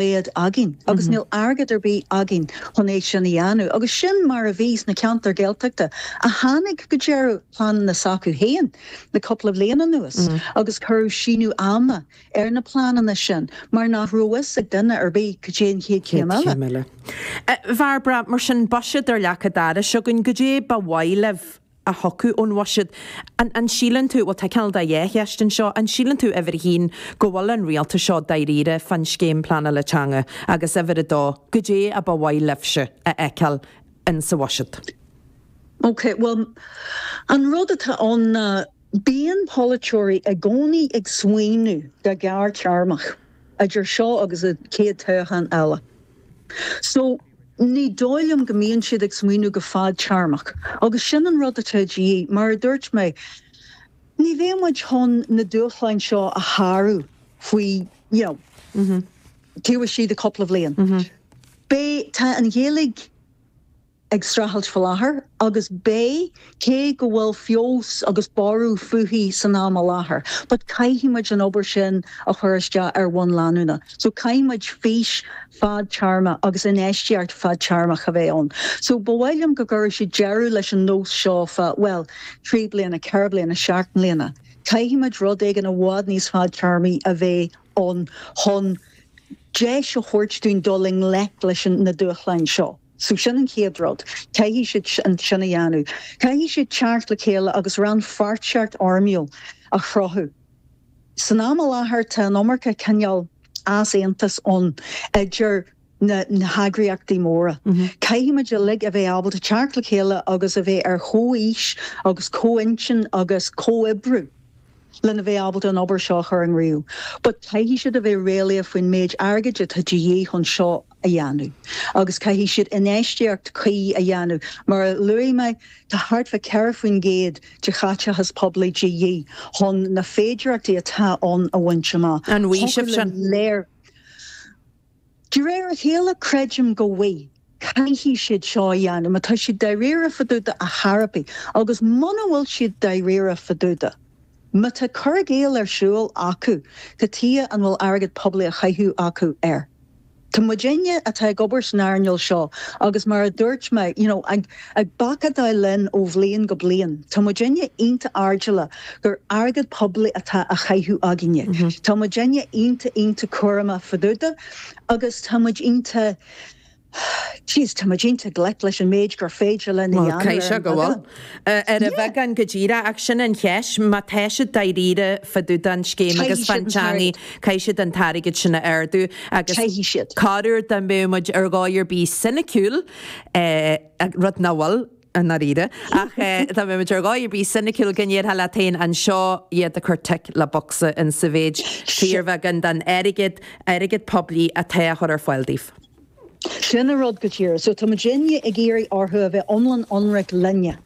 bith againn agus níl airgead ar bith againn chun é sin a dhéanamh. Agus sin mar a bhí sna ceantair Ghaeltachta a tháinig go deireadh pleanannaí s'acu féin le cúpla bhliain anuas agus cuireadh síneadh ama ar na pleananna sin mar nach raibh a fhios ag duine ar bith cad é an chéad chéim eile. Bairbre, mar sin, buiséad ar leac an dorais againn, goidé ba mhaith libh a thiocfadh ón bhuiséad. An síleann tú, bhuel tá cineál de dhá cheist anseo, an síleann tú, uimhir a haon, go bhfuil an rialtas seo dáiríre fán scéim pleanála teanga agus uimhir a dó, goidé a ba mhaith libhse a fheiceáil in sa bhuiséad? Ok, bhuel an rud atá ann ná bíonn polaiteoirí i gcónaí ag smaoineamh go gearr-téarmach. idir seo agus an chéad toghchán eile. So, ní dóigh liom go mbíonn siad ag smaoineamh go fadtéarmach. Agus sin an rud atá de dhíth, mar a dúirt mé, ní bheidh muid chun na dúshláin seo a shárú faoi, you know, taobh istigh de chúpla bhliain. Beidh, tá an Ghaeilge. ag streachailt faoi láthair, agus beidh, cé go bhfuil feabhas agus borradh fúithi san am i láthair, but caithfidh muid an obair sin a chur isteach ar bhonn leanúnach. So caithfidh muid fís fhadtéarmach agus infheistíocht fadtéarmach a bheith ann. So ba mhaith liom go gcuirfeadh siad deireadh leis an nós seo fá, bhuel, trí bliana, ceithre bliana, seacht mbliana. Caithfidh muid rud éigin i bhfad níos fadtéarmaí a bheith ann chun deis a thabhairt dúinn dul i ngleic leis na dúshláin seo. So sin an chéad rud. Caithfidh siad sin a dhéanamh. Caithfidh siad teacht le chéile agus rannpháirtíocht fhoirmiúil a chruthú. San am i láthair tá an iomarca cineál easaontais ann idir na heagraíochtaí móra. Caithfimid uilig a bheith ábalta teacht le chéile agus a bheith ar chomhaois agus comhintinn agus comhoibriú. lena bheith ábalta an obair seo a chur i gcrích, but caithfidh siad a bheith réalaíoch faoin méid airgid atá de dhíth chun seo a dhéanamh agus caithfidh siad infheistíocht cuí a dhéanamh. Mar a luaigh mé, tá thart fá 4 faoin gcéad de chaiteachas poiblí de dhíth chun na féidireachtaí atá ann a bhaint amach. An bhfaighfear sin? De réir a chéile, creidim go bhfuil, caithfidh siad seo a dhéanamh má tá siad dáiríre fá dtaobh de, a Therapy, agus muna bhfuil siad dáiríre fá dtaobh de, má tá cur i gcéill ar siúl acu cad chuige an bhfuil airgead poiblí a chaitheamh acu air. Tá muidne atá ag obair san earnáil seo, agus mar a dúirt mé, you know, ag. Ag bacadaí linn ó bhliain go bliain, tá muidinne iontach airdeallach gur airgead poiblí atá á chaitheamh againne. Tá muidinne iontach iontach cúramach fá dtaobh de agus tá muid iontach, jeez, tá muid iontach glic leis an méid gur féidir linn a Bhuel, dhéanamh ar caithfidh an sé go bhfuil. bheagán. Ar an Yeah! bheagán go díreach, ach sin an cheist, má tá siad dáiríre fá dtaobh den scéim agus Caithfidh siad fán teangaidh, t-airgead. caithfidh siad an t-airgead sin a ardú agus Caithfidh siad. corruair dá mbeadh muid ar dhóigh ar bith soiniciúil, rud nach bhfuil, i ndáiríre, ach dá mbeadh muid ar dhóigh ar bith soiniciúil go ndéarfá leat féin an seo iad ag cur tic le bocsa in sa mhéid is go bhfuil fíorbheagán den airgead, airgead poiblí, atá á chur ar fáil daoibh. Sin an rud go díreach. So tá muidinne ag iarraidh orthu a bheith iomlán ionraic linne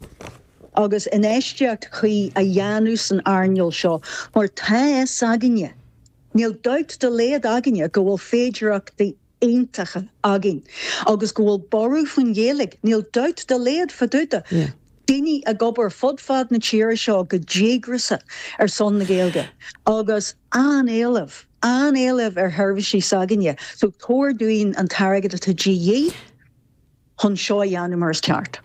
agus infheistíocht chuí a dhéanamh san earnáil seo mar tá a fhios againne, níl dabht dá laghad againne go bhfuil féidearthachtaí iontacha againn agus go bhfuil borradh faoin Ghaeilge, níl dabht dá laghad fá dtaobh de, daoine ag obair fud fad na tíre seo go díograsach ar son na Gaeilge agus an-éileamh, an-éileamh ar sheirbhísí s'againne. So tabhair dúinn an t-airgead atá de dhíth chun seo a dhéanamh mar is ceart.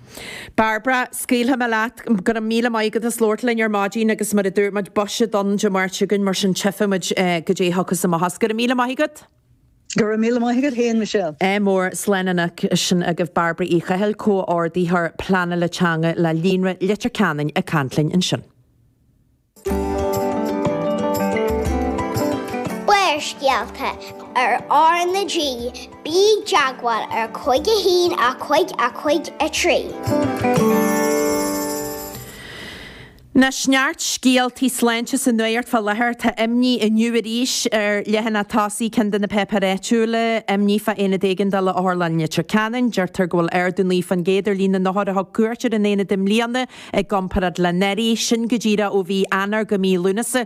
Bairbre, Scaoilfidh mé leat. Go raibh míle maith agat as labhairt linn ar maidin agus mar a dúirt muid, buiséad Dé Máirt againn mar sin tífidh muid goidé thiocfas amach as. Go raibh míle maith agat. Go raibh míle maith agat féin, Michelle. Slán. Anois sin agaibh Bairbre Uí Chaithil, Comh-Ordaitheoir Pleanála Teanga le Líonra Leitir Ceanainn ag caint linn ansin. Barrscéalta ar R na G, Bí i dteagmháil ar cúig a haon, a cúig, a cúig a trí. Anois, neart scéaltaí sláinte sa nuacht fá láthair. Tá imní inniu arís ar leathanach tosaigh ceann de na péipéir áitiúla, imní fá aonad éigeandála Otharlann Leitir Ceanainn. Deirtear go bhfuil ardú 9 faoin gcéad ar líon na n-othar a thug cuairt ar an aonad i mbliana i gcomparáid le anuraidh, sin go díreach ó mhí Eanáir go mí Lúnasa.